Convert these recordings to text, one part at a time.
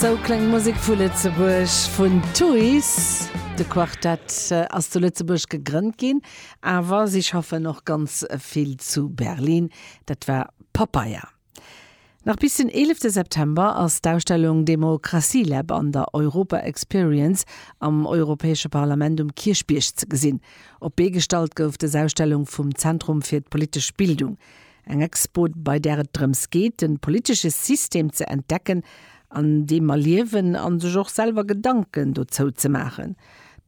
Sou kléngt d'Musek vu Lëtzebuerg vun Tuys. De Quartett ass zu Lëtzebuerg gegrënnt ginn, awer si schaffen och ganz vill zu Berlin. Dat war Papaya. Nach bis den 11 September ass d'Ausstellung Demokratielab an der Europa Experience am Europäesche Parlament um Kierchbierg ze gesinn. Op d'Bee gestallt gouf dës Ausstellung vum Zentrum fir d'politesch Bildung. Eng Expo, bei där et drëms geet, de politesche System ze entdecken, an deem mer liewen, a sech och selwer Gedanken dozou ze maachen.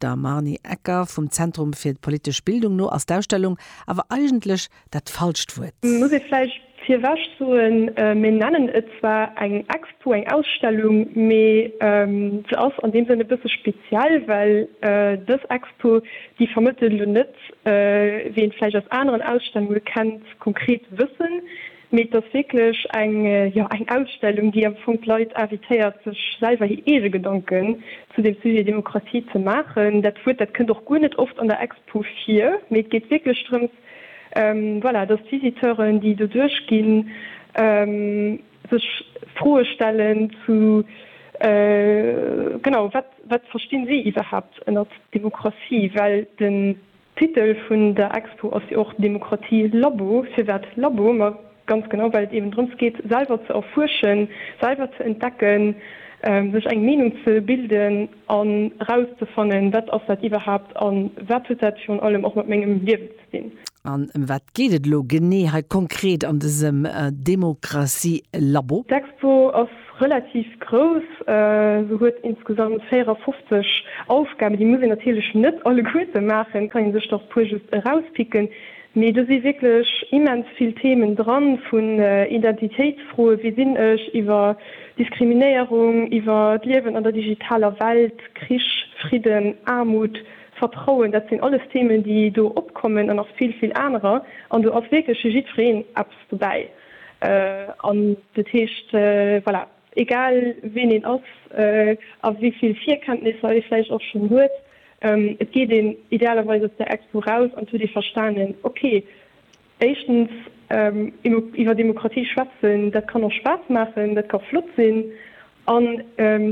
Der Marnie Ecker vum Zentrum fir politesch Bildung no ass d'Ausstellung awer eigentlech dat falscht Wuert. Muss ee vläicht virwech soen. Mir nennen et zwar eng Expo, eng Ausstellung, mee se ass an deem Sënn e bësse speziell, well dës Expo, déi vermëttelt elo net wéi een vläicht aus aneren Ausstellunge kennt, konkret wëssen, mee et ass wierklech eng, jo, eng Ausstellung, déi am Fong d'Leit invitéiert, sech selwer hir eege Gedanken zu dem Sujet Demokratie ze maachen. Dat Wuert, dat kënnt och guer net oft an der Expo vir, mee et geet wierklech drëms, voilà, dass d'Visiteuren, déi do duerchginn, Sech Froe stellen zu, genau, wat, wat verstinn si iwwerhaapt ënnert Demokratie? Well den Titel vun der Expo ass jo och Demokratie Labo. Firwat Labo? Ma ganz genau, well et eben drëms geet, selwer ze erfuerschen, selwer ze entdecken, sech eng Meenung ze bilden an erauszefannen, wat ass dat iwwerhaapt a wat huet dat virun allem och mat mengem Liewen ze. sinn. An ëm wat geet et elo genee hei konkret an dësem Demokratie-Labo? D'Expo ass relativ grouss. Se huet insgesamt 54 Aufgaben. Déi muss een natierlech net alleguerte maachen, kann ee sech der e puer just erauspicken. Mee do si wierklech immens vill Themen dran, vun Identitéitsfroen, wie sinn ech, iwwer Diskriminéierung, iwwer d'Liewen an der digitaler Welt, Krich, Fridden, Aarmut, Vertrauen, dat sinn alles Themen, déi do opkommen an nach vill, vill anerer. An do ass wierklech fir jiddwereen eppes dobäi. An dat heescht, voilà, egal ween een ass a wéi vill Virkenntnisser ee vläicht och schonn huet, et geet een idealerweis aus där Expo raus an et huet ee verstanen, okay, Éischtens, iwwer Demokratie schwätzen, dat kann och Spaass maachen, dat ka flott sinn. An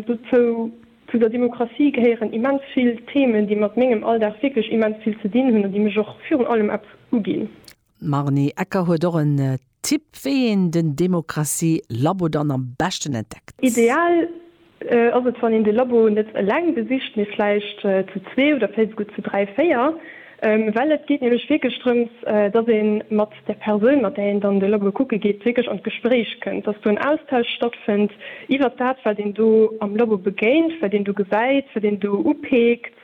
dozou, zu der Demokratie gehéieren immens vill Themen, déi mat mengem Alldag wierklech immens vill ze dinn hunn an déi mech och virun allem eppes uginn. D'Marni Ecker huet och en Tipp, wéi een den Demokratie-Labo dann am beschten entdeckt. Ideal Ass et wann een de Labo net eleng besicht, mee vläicht zu zwee oder vläicht esouguer zu dräi, véier, well et geet nämlech wierklech drëms, dass ee mat der Persoun, mat där een dann de Labo kucke geet, wierklech an d'Gespréich kënnt, dass do en Austausch stattfënnt iwwert dat, wat een do am Labo begéint, wat een do gesäit, wat een do upeekt,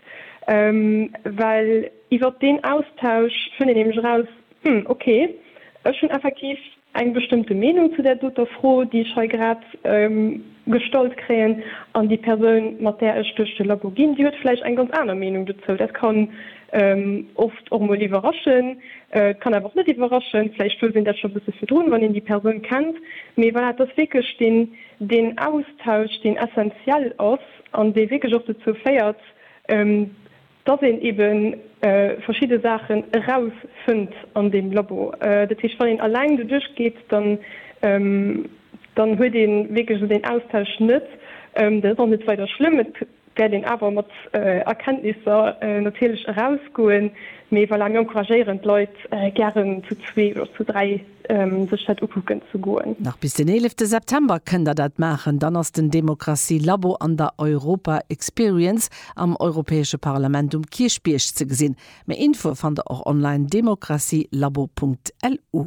well iwwert deen Austausch fënnt een nämlech eraus, Hm, okay, ech hunn effektiv eng bestëmmte Meenung zu där doter Fro, déi ech hei grad gestallt kréien, an déi Persoun, mat där ech duerch de Labo ginn, déi huet vläicht eng ganz aner Meenung dozou. Dat kann oft och emol iwwerraschen, et kann awer och net iwwerraschen. Vläicht wousst een dat scho e bësse virdrun, wann een déi Persoun kennt. Mee voilà, et ass wierklech deen, deen Austausch, deen essenziell ass an dee wierklech och dozou féiert, dass een ebe verschidde Saachen erausfënnt an deem Labo. Dat heescht, wann een alleng doduerch geet, dann huet ee wierklech esou deen Austausch net. Dat ass och net weider schlëmm. Et wäert een awer mat Erkenntnisser natierlech erausgoen. Mee voilà, mir encouragéieren d'Leit gären zu zwee oder zu dräi. sech dat ukucken ze goen. Nach bis den 11 September kënnt der dat maachen, dann ass den Demokratie Labo an der Europa Experience am Europäesche Parlament um Kierchbierg ze gesinn. Méi Infoe fannt der och online, demokratielabo.lu.